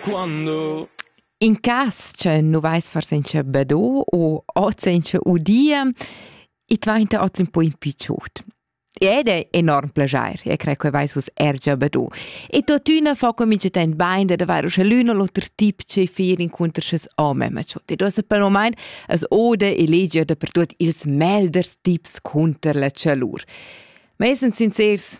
Quando In cas che nu vais far senza bado u ot senza udir, i dvainta ot ün po in pü chod. Ed è enorm plajair, e crei che vais uss er già bado. E tuottüna fa comincia tent bain dad avair uschè l'ün o l'oter tip che fer incunter sch's ho memma chod. Ed uossa pel momaint as oda e legia dapertuot ils melders tips cunter la chalur. Ma essend sincers,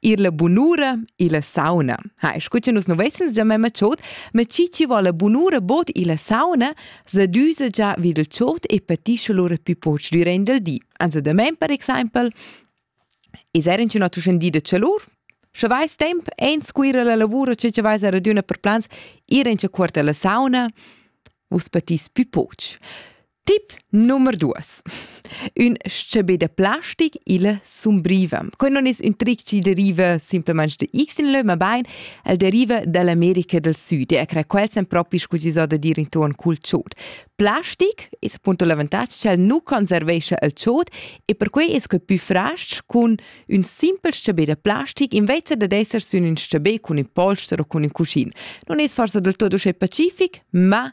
Ir la bunura illa sauna. Ha, scu cha nus nu vessans già memma chod, ma chi chi vo la bunura bod illa sauna, s'adüsa già vi dal chod e patischa lura pü poch durant il di. Also damain per exaimpel es eir in üna tuschendì da chalur, Sche vais temp ein scuira la lavura che che vais a raduna per plans ir in quarta la sauna, vus patis pü poch. Tip nummer duas. Un scebé da plastic illa sumbriva. Quai non es ün tric chi deriva simplamaing da X in lö, ma bain el deriva da l'America del Süd e cra quel sen propi scu chi s'ho da dir intuorn cul chod. Plastic es appunto l'avantatg ch'el nu conservescha il chod e perquai es que pü fras-ch cun ün simpel scebé da plastic invece dad esser sün ün scebé cun ün polster o cun ün cuschin. Non es forsa del tuot uschè pacific, ma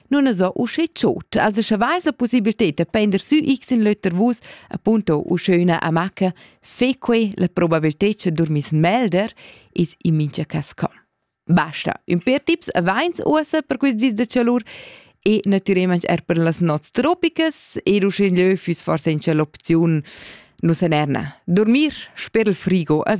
nun es o usche tschot, also scha vais la possibiltà da pender sü x in l'oter vus, appunto usche üna amacca, fe que la probabilità cha dormiss melder, is in mincha cas com. Basta, ün per tips avains uossa per quist dis da chalur e natüralment er per las nots tropicas ed usche lö füss forsa in l'opziun nu s'enerna. Dormir sper il frigo a